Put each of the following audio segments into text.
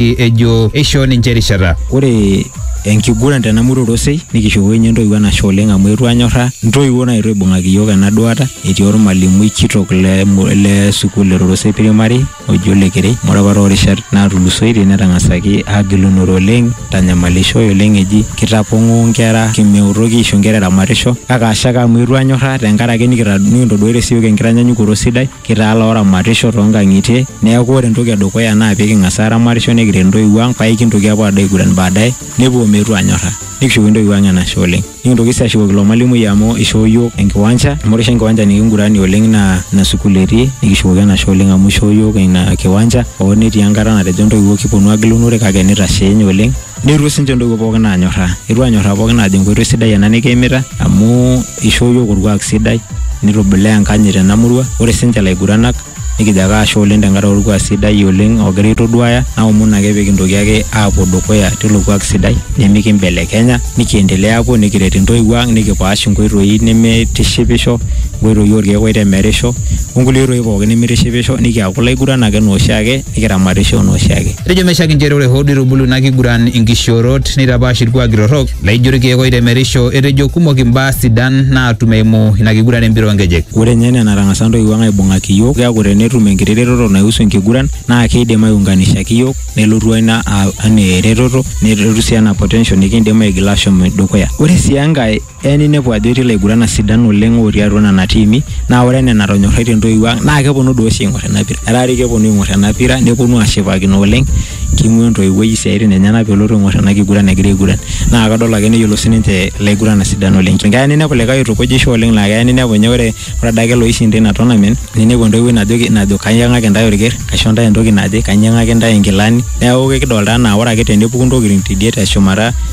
ejo eishoo ninche erishata. Ore enkiguran tena murua Orosei nikishooki ninye intoiwuo enashe oleng amu eetuo anyorraa intoiwuo naetuo aibung'aki iyiook ena duata etii ormalimui kitok le sukuul e Rorosei primary oji Ole Kerei amu ore apa toorishat naatulusoitie netang'asaki aagilunore oleng eitanyamalishoe oleng eji kitapong'oo inkera meutoki aisho inkera eramatisho kake ashe ake amu eetuo anyorraa tenkaraki nikintoduaita siiyiok enkitanyanyukoto sidai. Kitaa looramatisho too nkang'itie neeku ore entoki edukuya naa pee king'as aaramatisho nikiret intoiwuo ang' paa aikintoki aapuo aado aiguran baadaye nepuo meetu aanyorra nikishukoki intoiwuo ang' enashe oleng'. Nikintoki sii ashukoki ilo malimui amu ishoo iyiok enkiwanja amu ore oshi enkiwanja nikinguranie oleng' naa ina sukuul etii nikishukoki enashe oleng' amu ishoo iyiok ina kiwanja hoo netii enkata natejo intoiwuo kiponu aagilunore kake nitasheenye oleng'. Neiruk sinche ntoiwuo pookin aanyorraa. Eitu aanyorraa pookin aajo enkoitoi sidai ena nikiimita amu eishoo iyiook olkuak sidai nitubulaa enkanyit tena murua. Ore sinche laiguranak nikijo ake ashe oleng tenkaraki olkuak sidai oleng ogira aitoduaya naomon ake pee kintoki ake aapuo dukuya teilo kuak sidai nimikimbelekenya nikiendelea aapuo nikiret intoiwuo ang nikipaash inkoitoi nemeitishipisho, inkoitoi oolkeek oitemerisho onkulie oitoi pookin nemeitishipisho nikiaku ilaiguranak anaa oshiake. nikiramatisho anaa oshiake. Etejo meshiak inchere ore hoo duo eitubulu ina kiguran inkishoorot neitapaash ilkuaki torrok laijo ilkeek oitemerisho, etejo kumok imbaa sidan naatum eimu ina kiguran e mpira oo nkejek. Ore ninye enaa enatang'asa intoiwuo ang aibung'aki iyiook, keaku tenetum enkiti retoto naihusu enkiguran naa keidim aiunganishaki iyiook nelotu ina anaa eretoto nelotu sii anaa potential nikiindim aigila aashom dukuya. Ore sii enkae, Eya ninepu ajo etii ilaiguranak sidan oleng otii atua nena tiimi naa ore enaa enatonyorraitie intoiwuo ang naa keponu doi oshi aing'or ena pira. Etaa doi keponu aing'or ena pira neponu ashipakino oleng, king'uaa entoiwuoi isiaitin enyenak pelotu aing'or ena kiguran egira aiguran. Naa kadol ake neyiolo siininche ilaiguranak sidan oleng. Keya ninepu likae oitukujisho oleng laa keya ninepu ninye ore adake iloishinda ina tournament ninepu entoiwuoi najoki, najo kainyang'aki intae olker, kaisho intae entoki naje, kainyang'aki intae inkilani. Neeku kekidolita enaa ore ake tenepuku intokiting tidie teshumata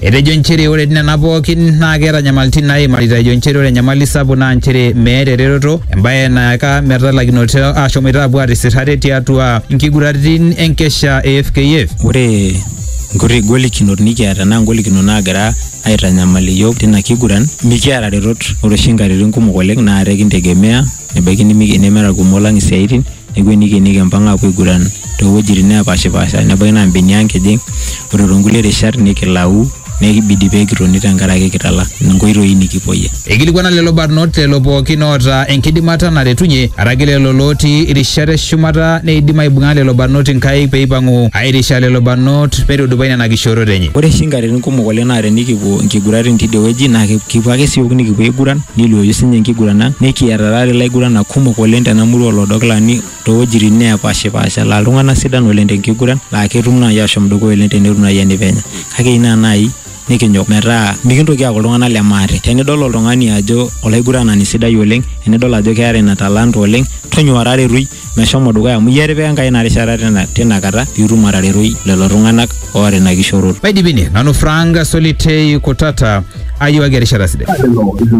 Etejo nchere ore nena pookin naa keeta nyamalitin naimarita ejo nchere ore enyamali sapuk naa nchere meeta eretoto embaye nayaka metalakinoto ashomoita apuo atisir ate tiatua nkiguraritin enkesha e FKF. Ore nkuti golikinot nikiata naa ngolikinot naagira aitanyamal iyiook tina kiguran, mikiata retot. Ore oshi nkatitin kumok oleng naa ate kintegemea nebaiki nemera kumok lang isiaitin neeku enikenieki empang aapuo aiguran toowuejitin neepashipaasha nebaiki naa mbenia nkejek ore toonkulie rishat nikilau nekibidi pee kitoni tenkaraki kitala nkoitoi nikipuoyie. Eikilikuana lelo barnot lelo pookin oota enkidimata naretunye araki lelo lootii irishat e shumata neidim aibung'a lelo barnot inkaik pee eipang'u aairisha lelo barnot meitudupai nena kishoorot enye. Ore oshi nkatitin kumok oleng naa tenikipuo nkiguratin tidie wueji naa kipuo ake siook nikipuo aiguran Neiluoyu sinye enkiguran ang nikiata taata ilaiguranak kumok oleng tena murua olodokilani towuejitin neepashipaasha laa iltung'anak sidan oleng tenkiguran laa ketum naai ashom dukuya oleng tenetum naai enipenya kake eyieu naa naai nikinyok metaa mikintoki aaku iltung'anak le maate. Tenidol oltung'ani ajo olaiguranani sidai oleng enidol ajo keeta ina talanta oleng tonyua taretoki meshomo dukuya amu iyie etipika Enkai ina rishata tina kata piitum ataretoi lelo tung'anak oota ina kishoroto. Maidipini, nanu Frank Solitei Kutata, ayiewaki erishata sidai.